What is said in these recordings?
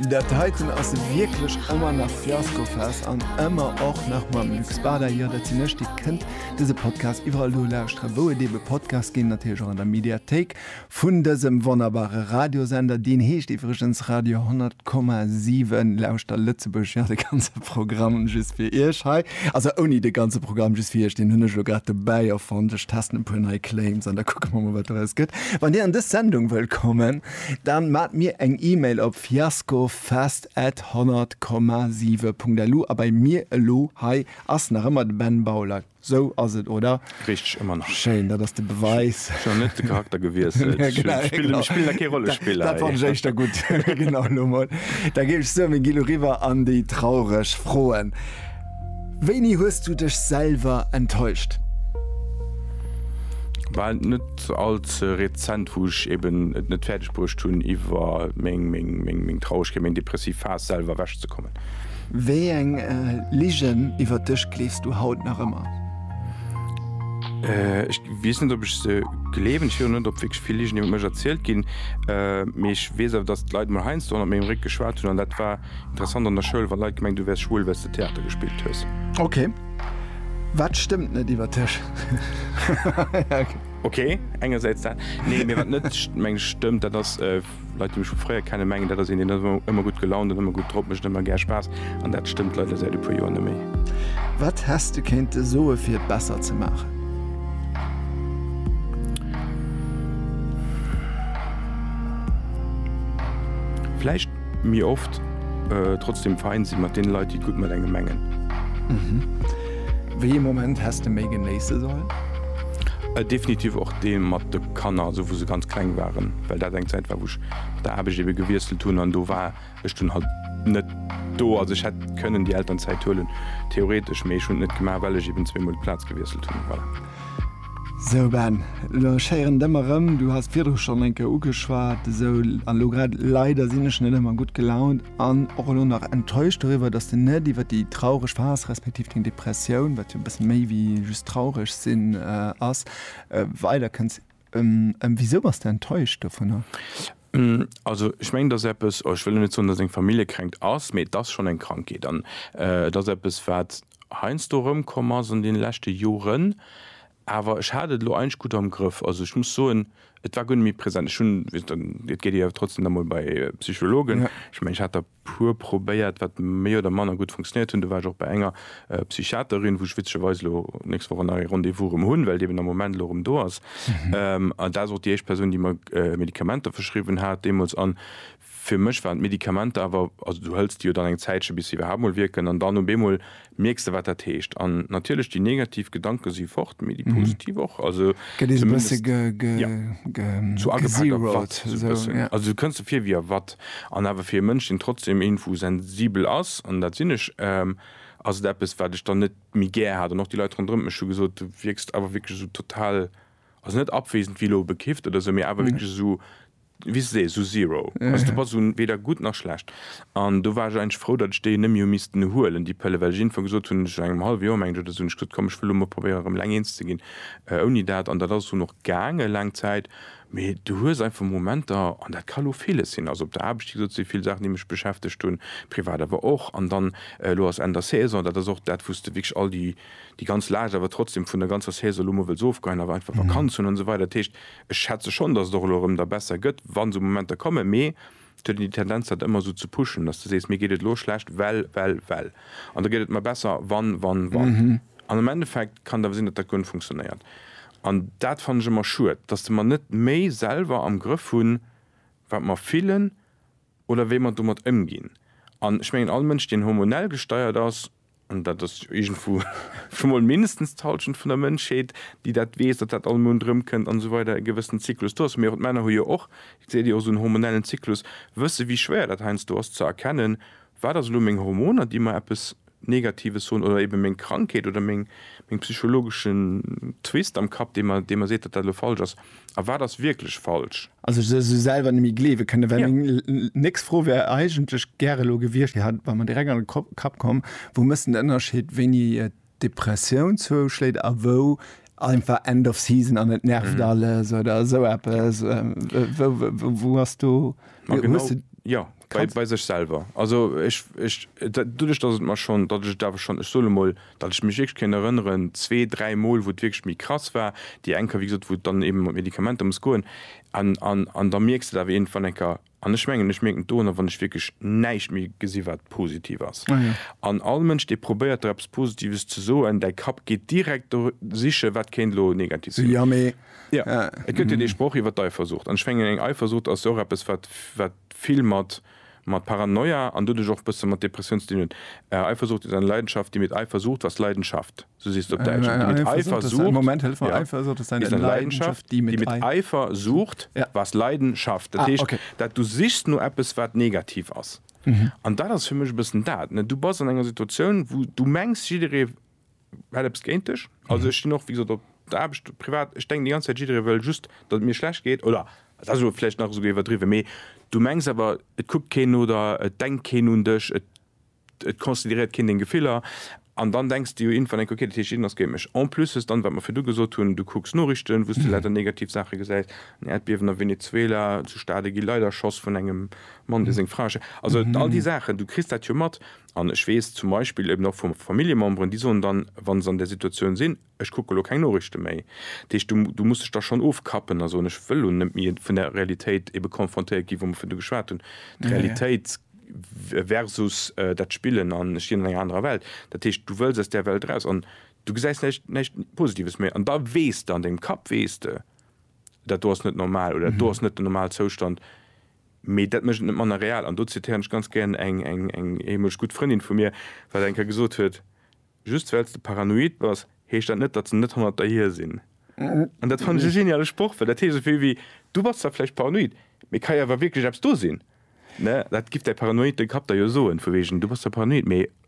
Dat heiten ass wierklech ëmmer nach Fiaskofest an ëmmer och nach mam Luc Spada. Jo, dat sinn ech. Dir kënnt dëse Podcast iwwerall do lauschteren, wou et eebe Podcasts ginn, natierlech och an der Mediathéik vun dësem wonnerbare Radiosender. Deen heescht iwwregens Radio 100,7. Lauschter Lëtzebuerg, jo, de ganze Programm just fir Iech hei. Also ouni de ganze Programm, just fir Iech. Deen hunn ech elo grad dobäi erfonnt. Ech testen e puer nei Claims an da kucke mer mol, wat doraus gëtt. Wann Dir an dës Sendung wëllt kommen, Dann maat mir eng Email op fiaskofest at 100,7.lu a bei mir elo hei ass nach ëmmer de Ben Bauler, sou ass et oder? Richteg, ëmmer nach. Schéin, dat ass de Beweis. Ech hunn net de Charakter gewiesselt, ech spillen da kee Rollespiller hei. Dat fannt ech éischter gutt. Genau, elo mol, da géif ech soen, mir gi elo riwwer an déi traureg Froen. Wéini hues du dech selwer enttäuscht? War net all ze rezent, wou ech eben et net fäerdeg bruecht hunn, iwwer meng Traurgkeet, meng depressiv Phas selwer ewech ze kommen. Wéi eng Ligen iwwer dech gleefs du haut nach ëmmer? Ech weess net, ob ech se gleewen. Ech weess och net, ob wierklech vill Ligen iwwer mech erzielt ginn. Mee ech weess awer, datt d'Leit emol heiansdo hannert mengem Réck geschwat hunn, an dat war Interessant an der Schoul wann Leit gemengt du wärs schwul wells de Theater gespillt hues. Ok, wat stëmmt net iwwer dech? Ok, engersäits dat, nee, mee wat net mengen ech stëmmt, dat ass, Leit déi mech vu fréier kennen, mengen dat ass een deen ass ëmmer gutt gelaunt an ëmmer gutt drop, mécht ëmmer gär Spaass an dat stëmmt leider säit e puer Joer neméi. Wat häss de kéinte soe fir et besser ze maachen? Vläicht. Mee oft trotzdem fein si mat deene Leit, déi et gutt mat engem mengen. Wéi ee Moment häss de méi genéisse sollen? Definitiv och dee mat de Kanner, esou wou se ganz kleng waren, well dat eng Zäit war, wou ech mat der Aarbecht ebe gewiesselt hunn an do war ech dunn halt net do. Also ech hätt kënnen déi Elternzäit huelen, theoretesch, mee ech hunn et net gemaach, well ech eben zweemol d'Plaz gewiesselt hunn. Voilà. Sou Ben, elo schéieren et ëmmer rëm, du has et virdru schonn eng Kéier ugeschwat, esou an elo grad, leider sinn ech net ëmmer gutt gelaunt an och elo nach enttäuscht doriwwer, dass de net iwwer déi traureg Phas respektiv deng Depressioun, wat jo e bësse méi wéi just traureg sinn ass, weider kënns. Wisou bass de enttäuscht dovunner? Ben, also ech mengen, et ass eppes, oh ech wëll elo net soen, dass et eng Familljekränkt ass, mee et ass schonn eng Krankheet an et ass eppes wat. heiansdo erëmkomm ass an deene leschte Joren, awer ech hat et elo eigentlech gutt am Grëff. Also ech muss soen, et war guer net méi present. Ech hunn, wéi gesot, et geet ee jo trotzdem da mol bei Psychologen. Ech mengen, ech hat der e puer probéiert, wat méi oder manner gutt funktionéiert hunn. Du war ech och bei enger Psychiaterin, wou ech witzegerweis elo d'nächst Woch nach ee Rendez-vous erëm hunn, well déi eben am Moment elo erëm do ass. An dat ass och déi éischt Persoun, déi mer Medikamenter verschriwwen hat deemools. An Fir mech waren d'Medikamenter awer, also du hëls déi jo dann eng Zäitche bis se iwwerhaapt mol wierken an dann op eemol mierks de wat dat heescht. An natierlech déi negativ Gedanke si fort, mee déi positiv och, also Gëtt een e bësse zumindest, ja, sou agepakt a watt, gezeroed, sou e esou, bëssen, ja. also du kënns der vir wéi a watt. An awer fir e Mënsch deen trotzdem iergendwou sensibel ass, an dat sinn ech, ass et eppes wat ech dann net méi gär hat. An och déi Leit ronderëm mech hu gesot, du wierks awer wierklech esou total, also net abwesend wéi elo bekifft oder esou, mee awer wierklech esou, wéi se seet, esou zero. Also do bass du weder gutt nach schlecht. An do war ech eigentlech frou, datt ech déi net méi hu missten huelen, déi Pëlle, well ech iergendwann gesot hunn, ech engem hallwe Joer, menge ech, oder esou, hunn ech gesot, komm, ech wëll lo mol probéieren, erëm eleng eens ze ginn ouni dat. An dat ass dunn och gaange laang Zäit. Mee du hues einfach Momenter, an dat ka lo villes sinn, also op der Aarbecht, wéi gesot, si vill Saachen, déi mech beschäftegt hunn, privat awer och. An dann, elo ass Enn der Saison, dat ass och dat, wou s de wierklech all déi, déi ganz Laascht awer trotzdem vun der ganzer Saison elo mol wëlls ofgeheien, awer einfach Vakanz hunn an esou weider. Dat heescht. Ech schätze schonn, dass et och elo erëm da besser gëtt, wa sou Momenter kommen, mee et huet een déi Tendenz, dat ëmmer esou ze pushen, dass de sees, mir geet et elo schlecht, well, well, well, an da gëtt et mer besser, wann, wann, wann. An am Endeffekt kann et awer sinn, datt dat guer net funktionéiert. An dat fannen ech ëmmer schued, dass de mer net méi selwer am Grëff hunn, wat mer fillen oder wéi mer domat ëmginn. An ech mengen, all Mënsch, deen hormonell gesteiert ass, an dat ass iergendwou scho mol mindestens d'Hallschent vun der Mënschheet, déi dat weess, datt dat all Mount erëmkënnt an esou weider e gewëssen Zyklus do ass. Mee och d'Männer hu jo och, et seet Dir, och esou en hormonellen Zyklus, wësse wéi schwéier dat heiansdo ass ze erkennen, wat ass elo meng Hormoner, déi mer eppes Negatives soen, oder eebe meng Krankheet oder meng psychologeschen Twist am Kapp, dee mer seet, datt dat elo falsch ass. a wat ass wierklech falsch? Also ech se selwer net méi gleewe kënne, well meng nächst Fro wär eigentlech gär elo gewiescht, déi hat war mer direkt an de Kapp komm, wou méchst de den Ënnerscheed, wéini et d'Depressioun zouschléit a wou einfach End of season an et nervt alles oder esou eppes? Wou ass do, hues de. Jo, bei sech selwer. Also ech, ech, doduerch datt et mer schonn, datt ech et awer schonn, ech soe lo mol, Datt ech mech wierklech kéint erënneren, zwee, dräi Mol, wou et wierklech méi krass war. Déi eng Kéier, wéi gesot, wou et dann eeben mat Medikamenter muss goen. An, an, an da mierks de et awer iergendwann eng Kéier. An ech mengen, ech mierken et doranner, wann ech wierklech näischt méi gesi wat positiv ass. An all Mënsch, dee probéiert der eppes Positives ze soen, däi Kapp geet direkt do siche wat kéint elo negativ sinn. Jo, et gëtt jo dee Sproch iwwer d'Eifersucht. An ech mengen, eng Eifersucht ass jo och eppes wat, wat vill mat. mat Paranoia an doduerch och bësse mat Depressioun ze dinn hunn. Eifersucht ist eine Leidenschaft, die mit Eifer sucht, was Leidenschaft, sou seet se op Däitsch, die mit Eifer sucht, ja, ist eine Leidenschaft, die mit Eifer sucht, was Leiden schafft. Dat heescht, dat du sichs no eppes, wat negativ ass. An dat ass fir mech e bëssen dat. Du bass an enger Situatioun, wou du mengs, jidderee hätt eppes géint dech. Also ech stinn och wéi gesot op der Aarbecht, privat, ech denken déi ganz Zäit jidderee wëll just datt et mir schlecht geet oder dat ass elo vläicht nach esouguer iwwerdriwwen, mee du mengs awer et kuckt keen no der, et denkt keen un dech, et et consideréiert keen deng Gefiller an dann denks de jo iergendwann enk, okay dat heescht jiddereen ass géint mech. En plus hues dann, wat mer virdu gesot hunn, du kucks Norichten, wou s de leider negativ Saache gesäis, en Äerdbiewen a Venezuela, zu Stade gi Leit erschoss vun engem Mann, dee seng Fra ersch. Also all déi Saachen, du kriss dat jo mat An ech weess zum Beispill eben och vu Familljememberen, déi soen dann, wa se an där Situatioun sinn, Ech kucke elo keng Noriichte méi. Dat heescht, du, du muss dech da schonn ofkappen a soen, Ech wëll elo net méi vun där Realitéit ebe konfrontéiert ginn, wou mer virdu geschwat hunn, d'Realitéit versus dat Spillen an ech lien an enger anerer Welt. Dat heescht, du wëlls aus där Welt eraus an du gesäis näischt, näischt Positives méi. An da weess de, an dengem Kapp weess de, Dat do ass net normal oder dat do ass net den Normalzoustand. Mee dat mécht et net manner real. An do zitéieren ech ganz gären eng eemoleg gutt Frëndin vu mir, wat eng Kéier gesot huet, Just well s de paranoid bass, heescht dat net, datt se net hannert der hier sinn. An dat fannen ech e geniale Sproch, well dat heescht esou vill wéi, Du bass zwar vläicht paranoid, mee et ka jo awer wierklech eppes do sinn. Dat giff däi paranoide Kapp der jo soen, vu wegen, Du bass zwar paranoid, mee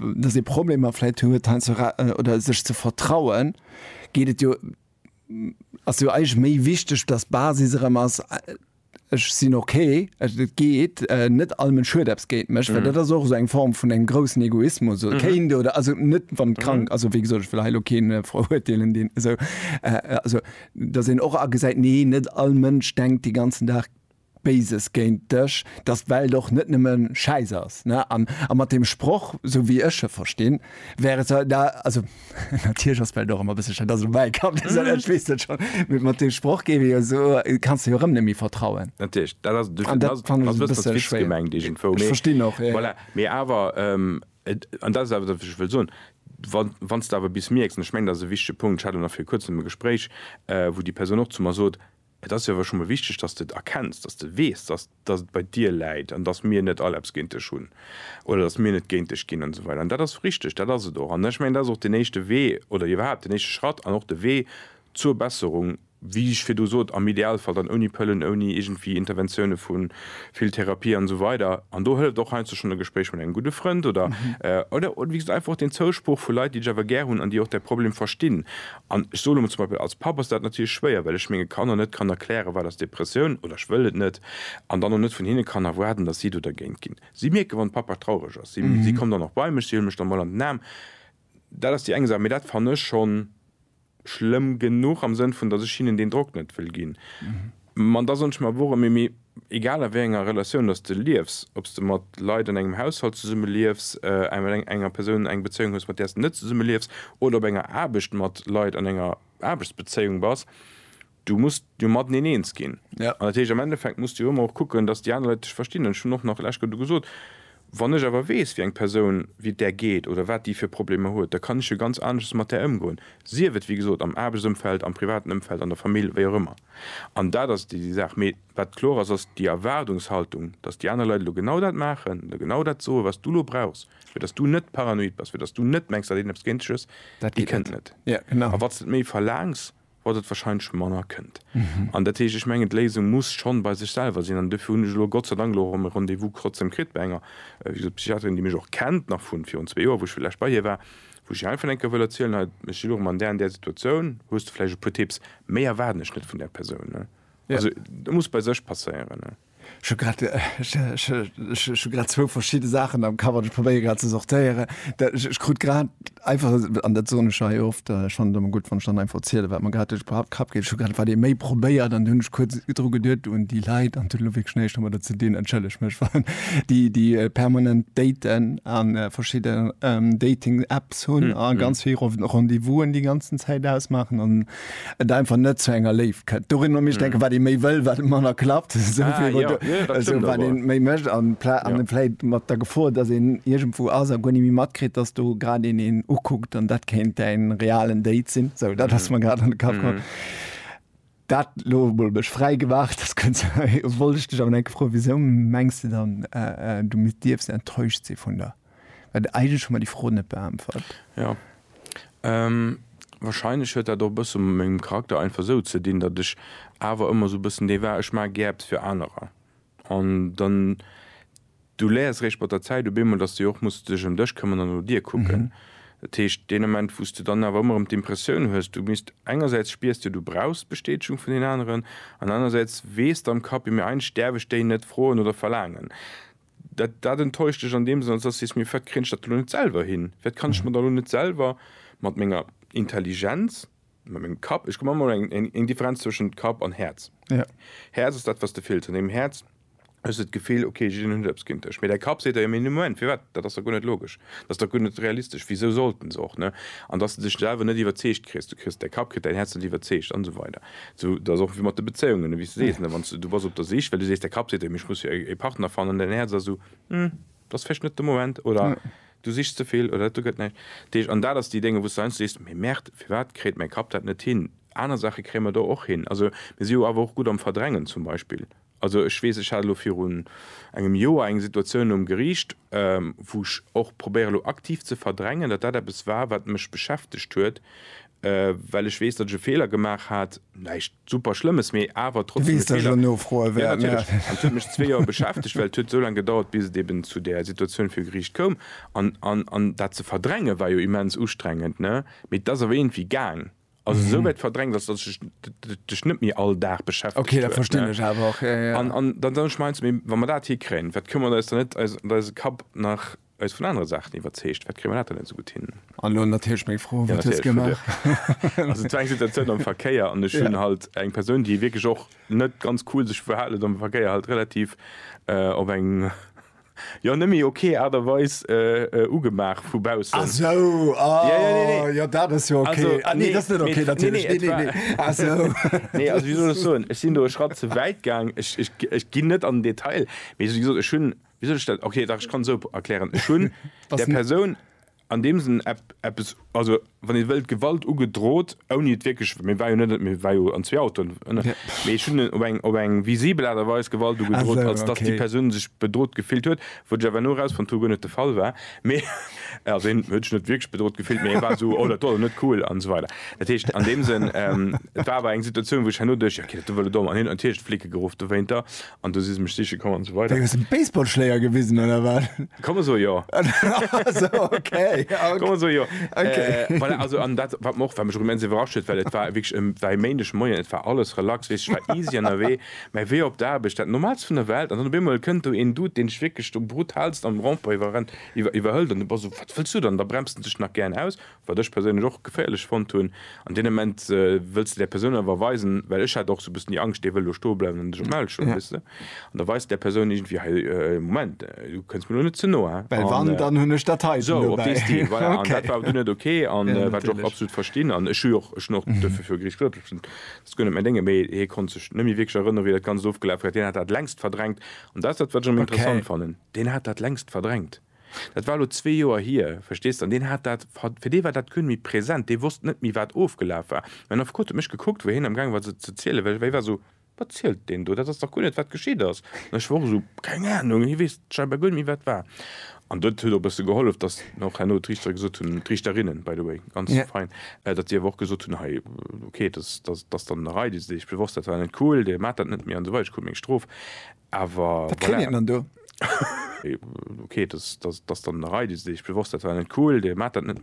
dass ee Problemer vläit huet heiansdo ra oder sech ze vertrauen, geet et jo, ass jo eigentlech méi wichteg, dass d'Basis erëm ass, ech sinn okay, et geet, net all Mënsch huet eppes géint mech, well dat ass och esou eng Form vun engem groussen Egoismus oder kéint oder also net wann et krank, also wéi gesot ech wëll hei elo keen verurteelen deen esou, also dass een och agesäit, nee net all Mënsch denkt de ganzen Dag, Béises géint dech, dass d'Welt och net nëmme Schäiss ass, ne? An mat deem Sproch, sou wéi ech e verstinn, wär et zwar, na, also, natierlech ass d'Welt och ëmmer e bësse Schäiss, dat ass elo mäi Kapp, dee sot dat, ech weess dat schonn, mee mat deem Sproch géif ee jo so, kanns de jo erëm net méi vertrauen. Natierlech, dat ass, an dat fannen ech e bësse schwéier, ech verstinn och, voilà, mee awer, an dat ass awer dat, wat ech wëll soen, wann s de awer bis mierks, an ech mengen, dat ass e wichtege Punkt, ech hat elo nach viru Kuerzem e Gespréich, wou déi Persoun och zu mer sot, Et ass jo awer scho mol wichteg, dass de et erkenns, dass de weess, dass dass et bei dir läit an dass mir net all eppes géint dech hunn oder dass mir net géint dech ginn an esou weider. An dat ass richtig, dat ass et och. An ech mengen, dat ass och deen éischte Wee oder iwwerhaapt deen éischte Schratt an och de Wee zur Besserung, wéi ech virdu sot, am Idealfall dann ouni Pëllen, ouni iergendwéi Interventioune vu vill Therapie an esou weider. An do hëlleft och heiansdo schonn e Gespréich mat engem gudde Frënd oder oder wéi gesot einfach och deen Zouspruch vu Leit, déi dech awer gär hunn an déi och däi Problem verstinn. An ech soen emol, zum Beispill als Papp ass dat natierlech schwéier, well ech menge Kanner net kann erklären, wat ass Depressioun, oder ech wëll et net, an dann och net vun hinne kann erwaarden, datt si do dergéint ginn. Si mierken, wann Papa traureg ass, si kommen dann och bei mech, si huele mech dann emol an den Aarm. Dat ass déi eng Saach, mee dat fannen ech schonn schlëmm genuch am Sënn vun, datt ech hinnen deen Drock net wëll ginn. Ma da soen ech mer, Worum méi méi egal a wéi enger Relatioun dass de liefs, ob s de mat Leit an engem Haushalt zesumme liefs, mat enger Persoun eng Bezéiung hues mat där s de net zesumme liefs oder op enger Aarbecht mat Leit an enger Aarbechtsbezéiung bass, du muss jo mateneen eens ginn. An dat heescht am Endeffekt muss de jo ëmmer och kucken, dass déi aner Leit dech verstinn. An ech hunn och nach lech do gesot, Wann ech awer weess wéi eng Persoun, wéi et där geet oder wat déi fir Problemer huet, da kann ech jo ganz aneschters mat där ëmgoen, sief et wéi gesot am Aarbechtsëmfeld, am privaten Ëmfeld, an der Famill, wéi och ëmmer. An dat ass déi Saach. Mee wat kloer ass, ass déi Erwaardungshaltung, datt déi aner Leit elo genau dat maachen, elo genau dat soen, wat s du elo brauchs, fir datt s du net paranoid bass, fir datt s du net mengs, datt een eppes géint dech hues, déi kënnt net. A wa s et méi verlaangs, wat et warscheinlech manner kënnt. An dat heescht, ech mengen, d'Léisung muss schonn bei sech selwer sinn. An dofir hunn ech elo Gott sei Dank elo erëm e Rendez-vous trotzdeem kritt bei enger, wéi gesot, Psychiaterin, déi mech och kennt nach vun virun zwee Joer, wou ech vlächcht bei hir war, Wou ech einfach enke wëll erzielen, hei, ech sinn och ëm an där an där Situatioun, hues de vläicht e puer Tipps? Méi erwaarden ech net vun där Persoun. Also dat muss bei sech passéieren. Ech hu grad, ech hu grad zwou verschidde Saachen am Kapp an ech probéiere grad ze sortéieren. Ech krut grad einfach, an dat soen ech jo hei oft, ech fannen et ëmmer gutt, wann ech dann einfach erzielen, wat mir grad duerch de Kapp geet, ech hu grad wat ee méi probéiert an du hunn ech kuerz dru geduet un déi Leit an et huet elo wierklech näischt domadder ze dinn, entschëllegt mech wann, déi déi permanent daten a verschidde Dating Apps hunn a ganz vill Rendezvousen déi ganzen Zäit ausmaachen an et einfach net zu enger Léift kënnt. Dorin hunn ech denken, wat ee méi wëll, wat manner klappt, wat ee méi mécht an an vläicht mat der Gefor, datt een iergendwou ass a guer ni méi matkritt, datt do grad een een ukuckt an dat kéint däin realen Date sinn. Sou, dat ass mer grad an de Kapp komm. Dat lo mol mech fräi gemaach, dass kënns wollt ech dech awer enke froen, wisou mengs de dann du dierfs enttäuscht si vun der, well eigentlech hu mer déi Fro net beäntwert. Jo, wahrscheinlech huet dat och e bësse mat mengem Charakter einfach esou ze dinn, datt ech awer ëmmer esou e bëssen dee war, ech maache gär eppes fir anerer, An dann, du léiers eréischt mat der Zäit op eemol, dass de jo och muss dech ëm dech këmmern an no dir kucken. Dat heescht, deen Ament, wou s du dann awer ëmmer erëm d'Impressioun hues, du misst, engersäits spiers de, du brauchs d'Bestätegung vun den aneren, an anerersäits weess de am Kapp, jo mee eigentlech däerf ech déi net froen oder verlaangen. Dat, dat enttäuscht dech an deem Sënn, als dass du sees, mee firwat kréien ech dat elo net selwer hin? Firwat kann ech mer da elo net selwer mat menger Intelligenz, Mä meng Kapp, ech hu manchmol eng, eng, eng Differenz zwëschent Kapp an Häerz. Ja. Häerz ass dat, wat s de fills. An deem Häerz hues de d'Gefill, okay, jiddeen huet eppes géint dech. Mee däi Kapp seet der, jo, mee Moment, firwat? Dat ass der guer net logesch. Dat ass der guer net realistesch. Wisou sollten se och, ne? An dass de dech selwer net iwwerzeegt kriss. Du kriss däi Kapp, kritt däin Häerz net iwwerzeegt an esou weider. Esou, dat ass och wéi mat de Bezéiungen, ne, wéi s de sees, ne, wann s de, du bass op der Sich, well du sees, däi Kapp seet der, mee ech muss jo e, e Partner fannen, an däin Häerz ass esou, hm. Dat ass vläicht net de Moment oder du sichs ze vill oder do gëtt näischt deeg. An dat ass déi Dénger, wou s de heiansdo sees, mee Merde, firwat kritt mäi Kapp dat net hin? Aner Saache kréie mer do och hin. Also mir si jo awer och gutt am Verdrängen zum Beispill. Also ech weess, ech hat elo virun engem Joer eng Situatioun nom Geriicht, wou ech och probéiere elo aktiv ze verdrängen, datt dat eppes war, wat mech beschäftegt huet, Well ech weess, datt ech e Feeler gemaach hat. Näischt super Schlëmmes, mee awer trotzdem e Feeler. Du weess, datt ech elo nofroe wäert. Jo, natierlech. An et huet mech zwee Joer beschäftegt, well et huet esou laang gedauert, bis et eben zu där Situatioun viru Geriicht koum. An dat ze verdränge war jo immens ustrengend, ne? Mee et ass awer iergendwéi gaang. Also esou wäit verdrängt, datt et dech net méi all Dag beschäftegt huet. Ok, dat verstinn ech awer och. An dann soen ech mir heiansdo, Mee wa mer dat hikréien, wat këmmert eis dann net eisen Kapp nach Eis vun anere Saachen iwwerzeegt, wat Grimonaten net esou gutt hinnen. An elo natierlech meng Fro, Wat hues gemaach? Also et war eng Situatioun am Verkéier an ech hunn halt eng Persoun, déi wierklech och net ganz cool sech verhal huet am Verkéier, halt relativ op eng, jo, net méi ok Aart a Weis ugemaach vu baussen. Ah sou, ah jo, dat ass jo ok. Ah nee, dat ass net ok natierlech. Nee, nee, nee, ah sou. Nee, also wéi soll ech soen, ech sinn do e Schratt ze wäit gaang. Ech ginn net an den Detail, mee wéi gesot, ech hunn. Wéi soll ech dat, ok, dach ech kann esou erklären, ech hunn der Persoun an deem Sënn eppes, also wann ee wëllt, Gewalt ugedrot, ouni et wierklech, mir war jo net, mir war jo an zwee Autoen, mee ech hunn op eng, op eng visibel Aart a Weis Gewalt ugedrot, als datt déi Persoun sech bedrot gefillt huet, wou ech awer elo erausfonnt hu, guer net de Fall war, mee also hien huet sech net wierklech bedrot gefillt, mee e war esou, oh dat do ass net cool an esou weider. Dat heescht an deem Sënn, et war awer eng Situatioun, wou ech herno duecht, jo, ok, dat do wëll e domm, an hien huet natierlech d'Flicke geruff dowéinter, An do si se mech siche komm an esou weider. Wéi, hues de Baseballschléier gewisen oder wat? Kann man soen, jo. Also, okay, ja, okay. Kann man soen, jo. Okay. Äh, voilà, also, an dat, wat mer och, wat mech och immens iwwerrascht huet, well et war wierklech e, war e Méindeg Moien, et war alles relax, weess, ech war easy ënnerwee, mä wéi op d'Aarbecht, dat Normaalst vun der Welt, an dann op eemol kënnt do een Dude, deen dech wierklech do brutalst am Rond-point iwwerrennt, iwwer, iwwerhëlt, an du bass esou, wat wëlls du dann? Da bremst en dech nach gären aus, Wat ech perséinlech och geféierlech fonnt hunn, an deem Ament wëlls de där Persoun awer weisen, well ech hat och sou e bëssen déi Angscht, dee wëll elo stoe bleiwen an dech op d'Maul schloen, weess de, an da weis de där Persoun iergendwéi, Hei, Moment, du kënns mir elo net ze no, hein? Well wann, dann hunn ech dat heiten dobäi. Esou op dee Stil, voilà. An dat war awer du net ok, a wat ech och absolut verstinn, an ech hu jo och, ech hunn och duerfir viru Gericht gesot, ech hunn dat ass guer net mäin Déngen, mee hie konnt sech net méi wierklech erënnere wéi dat Ganzt ofgelaf war, deen hat dat längst verdrängt, an dat ass dat, wat ech am interessant fannen, deen hat dat längst verdrängt. Dat war elo zwee Joer hier, verstees de, an deen hat dat, fir dee war dat guer net méi present, dee wosst net méi, wat ofgelaf war. Mä den Affekot huet mech gekuckt, wéi hien amgaange war se ze zielen, well hie war esou, Wat zielt deen do? Dat ass dach guer net, wat geschitt ass. An ech war och esou, Keng Anung, hie weess scheinbar guer net méi, wat war. An dat huet och e bësse gehollef, datt mir och herno d'Riichtere gesot hunn, d'Riichterinnen, by the way, ganz fein, datt déi awer och gesot hunn, Hei, okay, dat ass dann en Ereignis, dee sech bewosst hat, war net cool, dee maacht dat net méi an esou weider, dee krut meng Strof. Awer voilà. Wat kritt een dann do? Ok, dass dann der Rei, dee sech bewosst dat war net cool, dee maat dat net